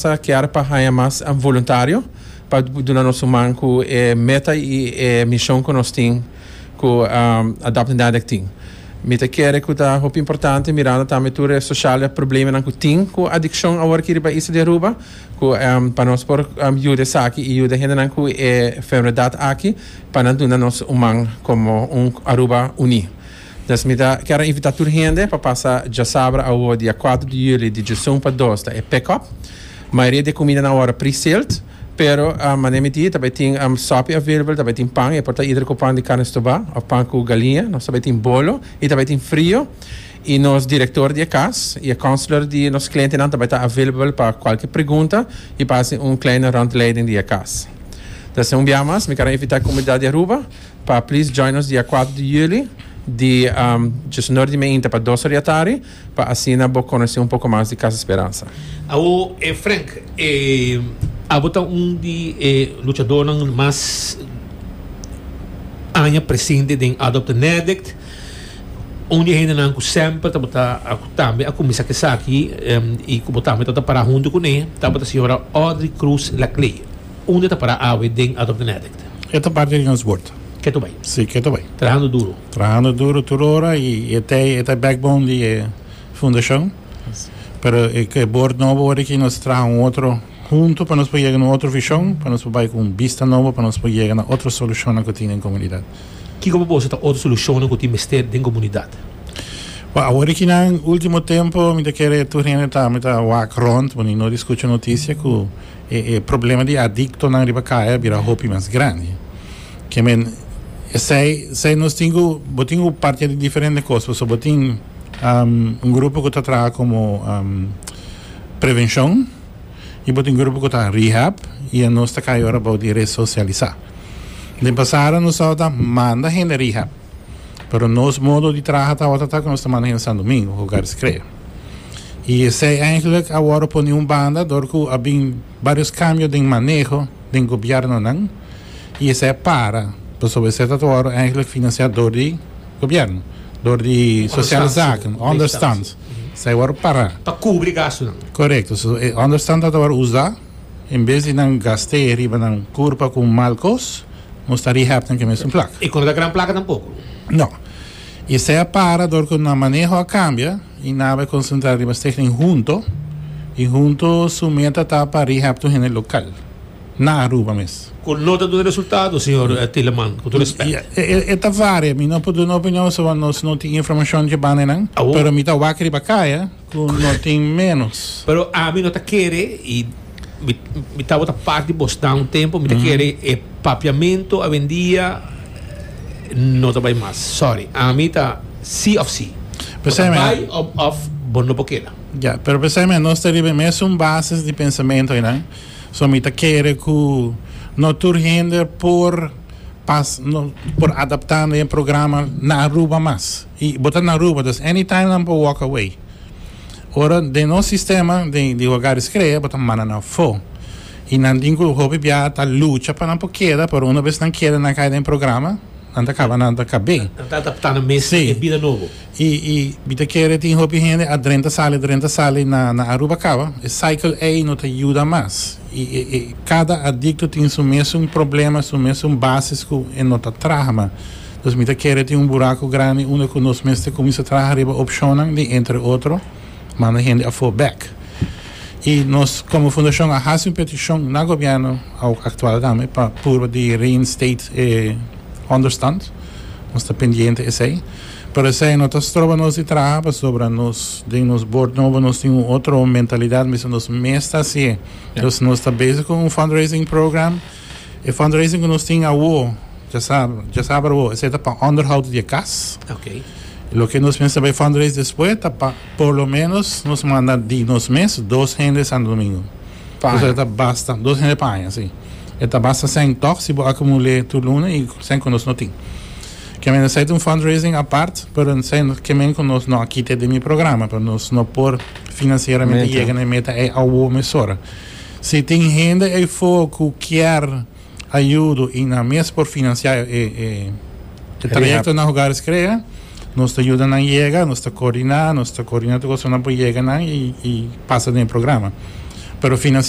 Ta kier pa haña mas voluntario pa duna nos un man cu e meta y e mision cu nos tin cu Adopt and Addict tin. Mi ta kere cu ta hopi importante mirando tambe tur e sociale problemanan cu tin cu adiccion awor aki riba Isla di Aruba cu pa nos por yuda esaki y yuda hendenan cu e enfermedad aki pa nan duna nos un man como un Aruba uni. Nos mi ta kere invita tur hende pa pasa djasabra awo dia kuater di juli di djesun pa dos ta e pick up. Mayoria di e kumida na wòrdu pre-sealed, pero manera mi di ta bai tin sòpi available, ta bai tin pan, e por ta either ku pan di karne stubá òf pan ku galiña, nos ta bai tin bolo i ta bai tin frio. I nos direktor di e kas i e counselor di nos klientenan ta bai ta available pa kualke pregunta i pa hasi un kleine rondleiding di e kas. Ta esei un bia mas mi kere invita e komunidat di Aruba. Pa please join nos dia cuatro di juli di djus nor di meinta pa dos oria tardi pa asina bo conoci un poco mas di Casa Esperanza. Awo e Frank e abo ta un di e luchadornan mas aña presente den Adopt a Nerdict un di e hendenan cu semper tabata cu tambe a cuminsa cu esaki y cu bo tambe tabata para hunto cune tabata señora Audrey Cruz Laclée. Unda ta para awe den Adopt an Addict? E ta parti di nos bord. Keto bay. Si, keto bay. Trahando duro. Trahando duro tur ora y e ta e ta e backbone di e fundacion. Pero e e bord nobo word aki nos traha un otro hunto pa nos por yega na un otro vision, pa nos por bay cu un bista nobo pa nos por yega na otro solucionnan cu tin den comunidad. Kico pa boso ta otro solucionnan cu tin mester den comunidad? Bo a word aki nan ultimo tempo mi ta kere tur hende ta mi ta wak rond bo ni noti scucha noticia cu. E e problema di adictonan riba caya a bira hopi mas grandi. Ke men, esey, esey nos tin cu, bo tin cu partia di diferente cos, pasobra bo tin, um, un grupo cu ta traha como, um, prevencion, y bo tin grupo cu ta rehab, y anos ta caya ora bou di resocialisa. Den pasado nos tabata manda hende rehab, pero nos modo di traha tabata ta cu nos ta manda hende Sandomingo, Hogares Crea. Y esey eigenlijk a worde pone un banda dor cu a bin varios cambio den maneho den gobiernonan y esey a para pasobra esey ta worde eigenlijk financia door di gobierno, door di Sociale Zaken, Onderstand. Esey a worde para. Pa cubri gastonan. Correcto. So e Onderstand ta ta worde usa en bes di nan gaste riba nan curpa cu un mal cos, nos ta rehab den aquel mesun plak. Y cu no ta gran plaka tampoco. No. I esei a para dor ku nan maneho a kambia i nan a bai konsentrá riba Stichting Hunto, i Hunto su meta ta pa rehab tur hende lokal na Aruba mes. Kon lo ta duna resultado, señor Tieleman? Ku tur respèt. E ta varia, mi no por duna opinion, so nos no tin informashon djebá nenan, pero mi ta wak riba kaya. Cu no tin menos. Pero ami no ta kere y mi mi ta bota part di bos nan un tempo mi ta kere e papiamento awendia no ta bay mas sorry ami ta si of si bo ta P'esei bay me, of of bo no por keda. ya, pero p'esei me nos ta riba e mesun bases di pensamento aynan, so mi ta kere cu no tur hende por pas no por adapta na e programa na Aruba mas. Y bo ta na Aruba, dus anytime nan por walk away. Ora den nos sistema di hogar di screa bo ta manda nan fo. Y nan tin cu hopi biaha ta lucha pa nan por keda, pero una bes nan keda y nan cay den e programa, nan ta caba nan ta cabe. Nan ta adapta nan mes na e bida nobo. Si. Y mi ta kere tin hopi hende a drenta sali, a drenta sali na Aruba caba. E cycle ey no ta yuda mas. Y e cada adicto tin su mesun problema, su mesun basis cu e no ta traha mas. Nos mi ta kere tin un buraku grandi unda ku nos mester kuminsá traha riba opshonnan di entre otro manda hende afó bèk. I nos komo fundashon a hasi un petishon na gobièrnu aktual tambe pa purba di reinstate e ònderstand. Nos ta pendiente esei. Pero esei no ta stroba nos di traha pasobra nos den nos bord nobo nos tin un otro mentalidat mester nos mes ta hasié. Nos ta bezig ku un fundraising program. E fundraising ku nos tin awor, dja sabe, dja sabe awor, esei ta pa onderhoud di e kas. Ok. Loke nos mester bai fundraise despues ta pa por lo menos nos manda di nos mes dos hende Santo Domingo. Pa aña. Esei ta basta, dos hende pa aña, si. E ta basta sèn tòg si bo akumul'é tur luna i sèn ku nos no tin. Ke men esei ta un fundraising apart, pero esei ke men ku nos no a kit'é den e programa, pero nos no por finansieramente yega na e meta ei awor mesora. Si tin hende ei fogo ku kier ayudo i nan mes por finansiá e trayekto na Hogares Crea, nos ta yuda nan yega, nos ta koordiná, nos ta koordiná tur kosnan pa yega nan i pasa den e programa. Pero finansier.